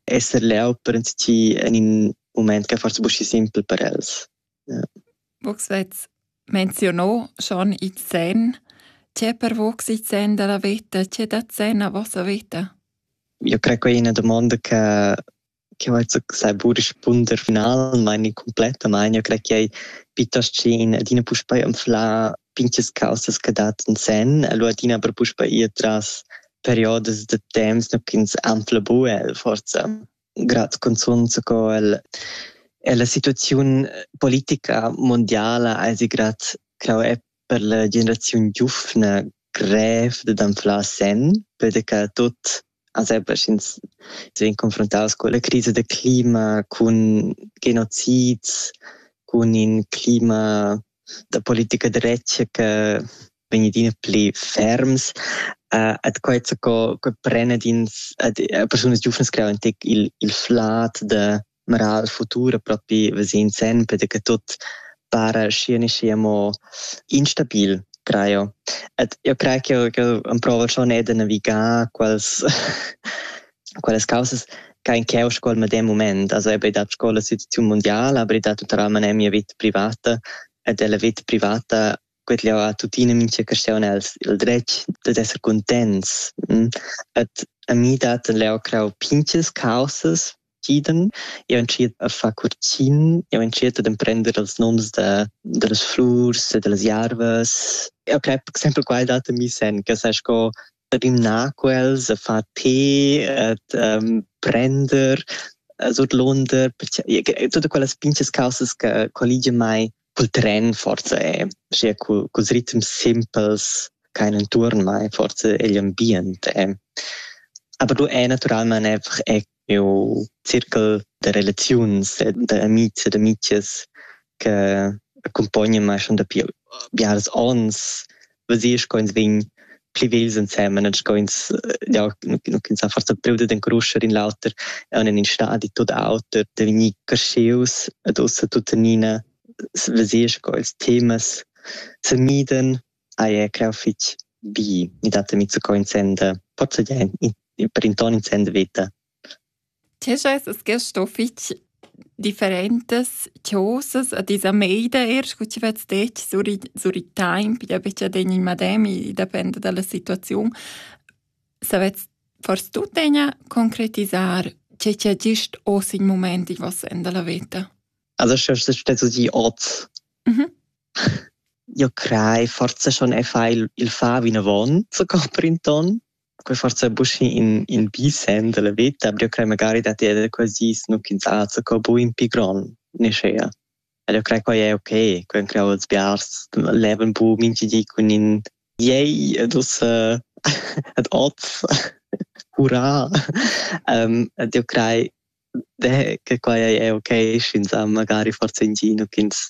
esser leu per entschi en in moment che forse buschi simpel per els. Ja. Vos vezz menzionò schon i zen. C'è per vos i zen della vita? C'è da zen a vostra vita? Io creo che è una domanda che che va zu sei burisch punder final meine komplette meine io creo che è piuttosto in adina puspei am fla pinches causas che dat in sen e lu adina per puspe ir tras periodas da temps no ch'ins anfla bu el forza grad cunzunt sco el ella situaziun politica mundiala eisi grad clau è per la generaziun giufna grev dad anflar sen perche che tut Sempre sch'ins vegn confrontaus culla crisa da clima, cun genocids, cun in clima da politica da retg che vegn adina pli ferms, uh, et quai co, co pren ins, uh, persunas giuvnas creau in tec il, il flad de Mera il futur propi vesend sempre che tut para schi ne schi amo instabil traio. Ed io craj ch'eu ch'eu amprouva schon eir da navigar quels quellas causas cha in ch'eu scoul medem mument. Also eir be dat scoula situaziun mundiala, aber i dat tuotalmaing eir mia vita privata ed la vita privata quet'jeu ha tuttina mintga caschaun els il dretg dad esser cuntents. Et a mi dat leu crau pinches causas entschieden. Io entschiet a far curtgin, io entschiet ad emprender els noms da, dallas flurs e dallas jarvas. Eu crei per exempel quai dat a mi sen, che sai sco rimnar quels, a far tè, ad um, prender, surdlonder, tutte quelle pinches causes che collige mai cul tren forsa è schi cul culs ritms simpels ch'hain intuorn mai forsa egl ambient è. Aber du è natüralmaing einfach eir miu circul da relaziuns e d'amids e d'amichias che accumpognan mai schon dapi biaras ons veser sco'ns vegn pli vegls ensemen e sco'ns ja, ins ha forsa preu dad encruscher in l'auter en in stadi tot auter da vegnir cresceus ed ussa tuttenina veser sco ils temas se miden ai è creu fich bi i dat mi zu co in senda forsa ja per in ton in senda veta Tg'eschas es gest sto fich differentas chosas a tis ameida eir scu chi vets detg sur i sur i taimp, i da betg adegna il madem, i dapenda da la situaziun. Savets fors tuttegna concretisar che chi ha gist hoz il mumaint in voss sen da la veta. Also sche stesa ti ot. Io crei forsa schon e fai il il far vinavon, so compri ün ton. Poi forsa buc in in bi senn dalla veta, aber io crei magari dat ella quasi snuchinzatge co bu in pi gron neschea. Ed io crei quai è ok, quai han creau els biars, levan bu mintgi di cun in yay ed ussa ed oz hurra. um, ed io crei che quai è ok, sch'ins ha magari forsa in gino ch'ins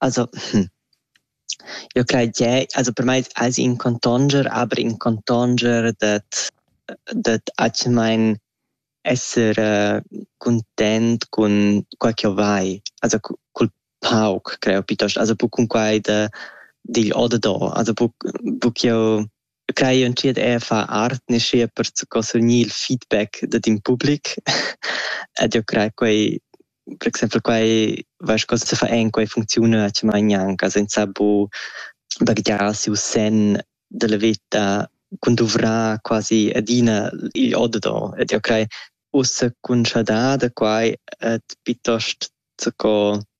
Also, eu crai che also per mai ais in contonger, aber in contonger dad dad atgemaing esser cuntent cun quai ch'eu vai, also cul pauc creo, pietost, also buc cun quai da digl o da do, also buc buc ch'eu Quai entschiet era far art neschia per scossogner il feedback dad in public ed jeu crei quei per exempel quei vai sco se fa en quei funcziuna actualmein gnanca senza bu baghegiar siu senn dalla veta cun duvrar quasi adina igl oddador ed jeu crei ussa cun schadar da quai ed piuttost sco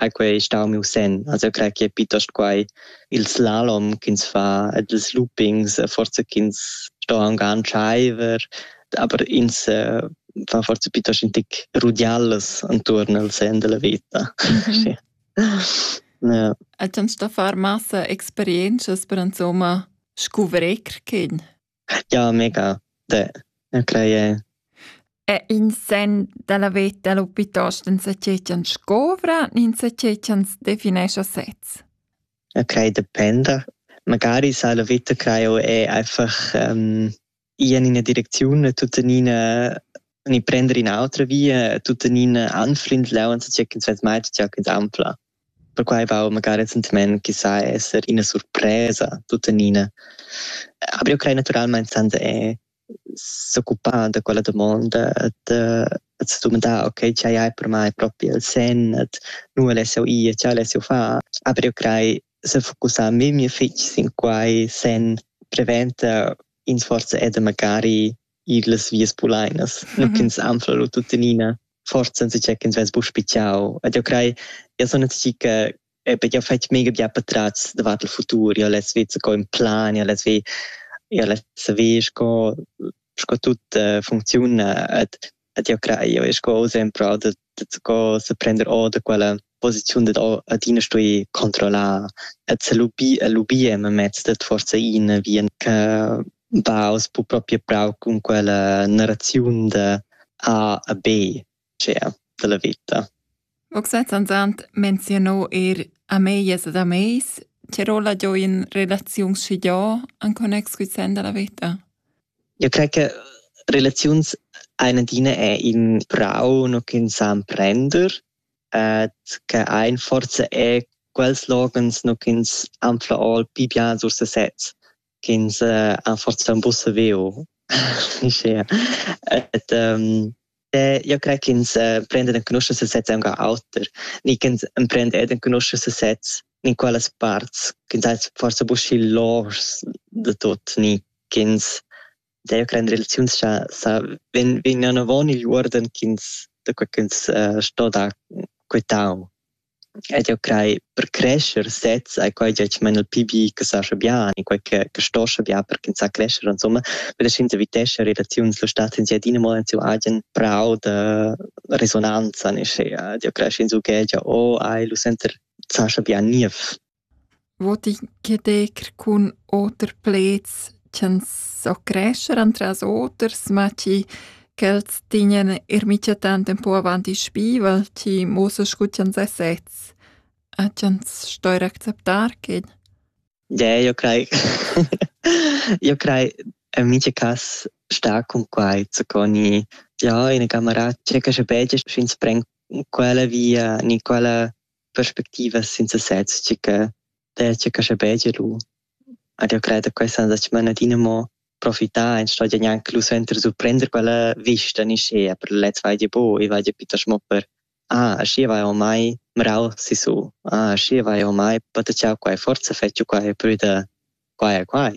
ha quei stau miu senn. Also eu crei che è piuttosto quai il slalom ch'ins fa ed ils loopings, forza ch'ins sto aunc antschaiver, aber ins uh, fa forza piuttosto in tic rudiallas anturn al sen della veta. Mm -hmm. ja. Hat uns da far massa experiences per insomma scuvrir chin? Ja, mega. De, crei e... E in sen dalla veta lu piuttosto enzatgei ch'ans scovra, enzatgei ch'ans definescha sez? Crei dependa. Magari sa la vita crei è einfach um, ir in ina direcziun e tuttenina e prender un'altra via tuttenina anfrindlau enzatgei ch'ins vess mai tgau ins anfla. Perquai va magari recentemente che sa esser ina surpresa tuttenina. Aber io crei naturalmente senza è s'occupar da quella domanda da att domandar, ok, ce hai per mai proprio il sen, at nu alessio ir, ce alessio fa. Aber io crei se focussar memia fitg sin quai sen preventa in forza ed magari ir las vias pulainas, mm -hmm. ch'ins anfla lu tuttenina, forza enzacha ch'ins vess buc spitgau. Ed eu crei, eu son enzachi che perché ho fatg mega bia patratgs davart il futur, io les ved co in plan, io les ved, io les saver sco, sco tut uh, funcziuna ed Ed jau crai, jau sco sempre da, da, sco sa prender or da quella posiziun dad adina stuì controllar e lubir, lubir memez dad forza in vien che baus bu proprio brau con quella narrazione da A a B, cioè, della vita. Oxatantant menziunò eir ameglias ed ameis ch'eir ho laggiò in relaziun schigià in connex cul sen da la veta. Eu crai che relaziuns hain adina eir ün prau no ch'ün sa emprender ed che hain forsa eir quels loghens no ch'üns han fla ol pi bien sur sesez. ch'ins ha forsa buca saviu uschia. Et ähm, io crei ch'ins prenda enconuscher sesez aunc auter, ni ch'ins emprenda ed enconuscher sesez in quellas parts, ch'ins ha forsa buca il lors de tot, ni ch'ins deve prendere relaziuns cha sa ven vegnan avon igl uorden ch'ins da quei ch'ins uh, sto dar quetau. Ed eu craj per crescher sezs hai quai gia tschmain il pi bi che sascha bian e quai che che stoscha bian per ch'ins sa crescher insomma, per che ins evitescha relaziuns. Lo stat ins adina mo en siu agen prau da resonanza, nischi ed eu cresch insumma che gia o ai lu senter sascha bian niev. Vot i ch'edecker cun oter pleds ch'ans so crescher antras oters, ma chi ch'els tignan eir micha tant ün po avant i spivel, chi muossa scu ch'ans es sezs e ch'ans stoir acceptar quel. Deh, io craj io craj in micha cas stà cun quai zucò gnì, ja, ina camarà tschecca sche pecha sch'ins pren quella via, gnü quella perspectivas senza sez tge che dettia che sche betg lu. Ed io cred che questa da smanadina mo profitar en sto gnanc lu senter surprender quella vista ni schea per lez vai di bo e vai di pitta schmo per ah schi vai ormai mrau si su ah schi vai ormai patachau quai forza fettu quai prüda quai e quai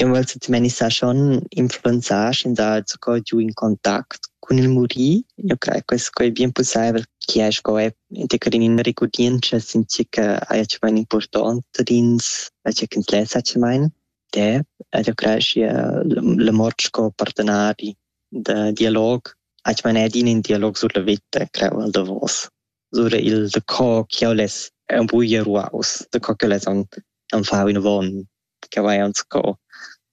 Eu vel tuttenina sar schon influenzar schi ins ha sco giu in contact cun il muri. Eu craj che sco ei bien pussaivel chi hai sco è integrin in regurdientscha sin tgi che haja cemain impurtont ad ins, a tgi ch'ins lessa cemain. De, ed eu craj schi la mort sco partenari da dialog ha cemain adina in dialog sur la vita, creu al davos. Sur il da co chi eu less un buglia ruaus, da co ch'eu less am fau inavon ch'eu hajan sco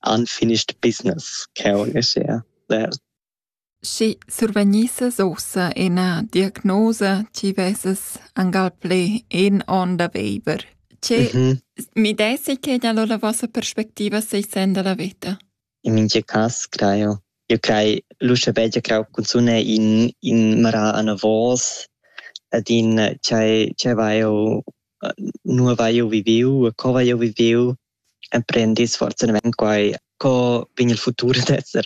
unfinished business ch'eu leschea der. Schi survegnisses uossa üna diagnosa chi vessas angal plü in on da viver. Che mi dessi che gnal ho la vossa perspectiva seis sen da la vita? In mintga cass crai jeu. Jeu crai l'uschè bel ch'jeu crau cunzun è in in marà anavos ed in tgei tgei vai jeu nua vai jeu viviu e co vai jeu viviu. Emprendis fortunadamain quai co vegn il futur ad esser,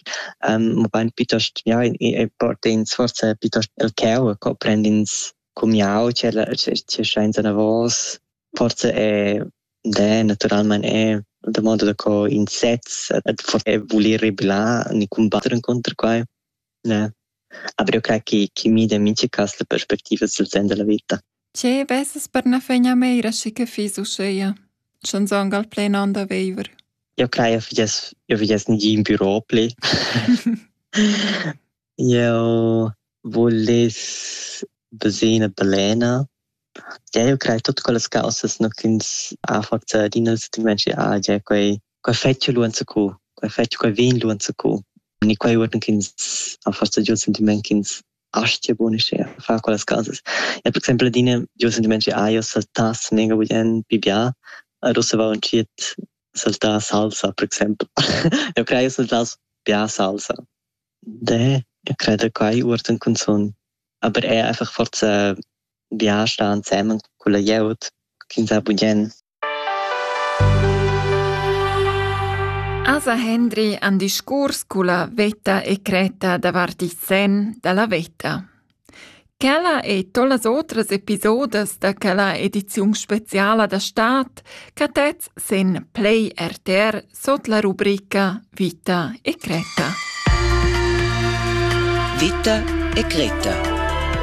mabain piuttost ja e port'ins forsa piuttost el cheu e co prend'ins cumiau tgei tgei schains anavos. Forse è det naturalmein è da moda da co in sez et forse è voler rebellar ni combatter inconter quai ne aber eu crei chi chi mida in mincha cas la perspectiva sul sen da la vita Tge vesas per na fegna meira schi che fiss uscheia, sch'anzang al plen an da veiver? Eu crei eu fiess eu fiess nigin bürò pli. Eu vuless bösina balena. Eu craj tuot quellas causas no ch'ins ha forsa adina il sentimaint che ah già quai quai fetscha lur zacù, quai fetscha quai vegn lur zacù. E quai uorden ch'ins ha forsa giò il sentimaint ch'ins astia buonischer a far quellas causas. Ja per exaimpel adina giò il sentimaint che ah, eu saltà snega bugen pi bia, ad ussa va entschiet saltà salsa per exaimpel. eu craj saltà bia salsa. De, io creda quai uortan cunzun. Aber eir einfach forza viager sta ansemen culla glieud chi'ns ha bugen. Asa Hendri han discurs culla vetta e cretta davart il sen da la vetta. Quella e tollas otras episodas da quella ediziun speciala da stad cattet sen Play RTR sot la rubrica Vita e Creta. Vita e Creta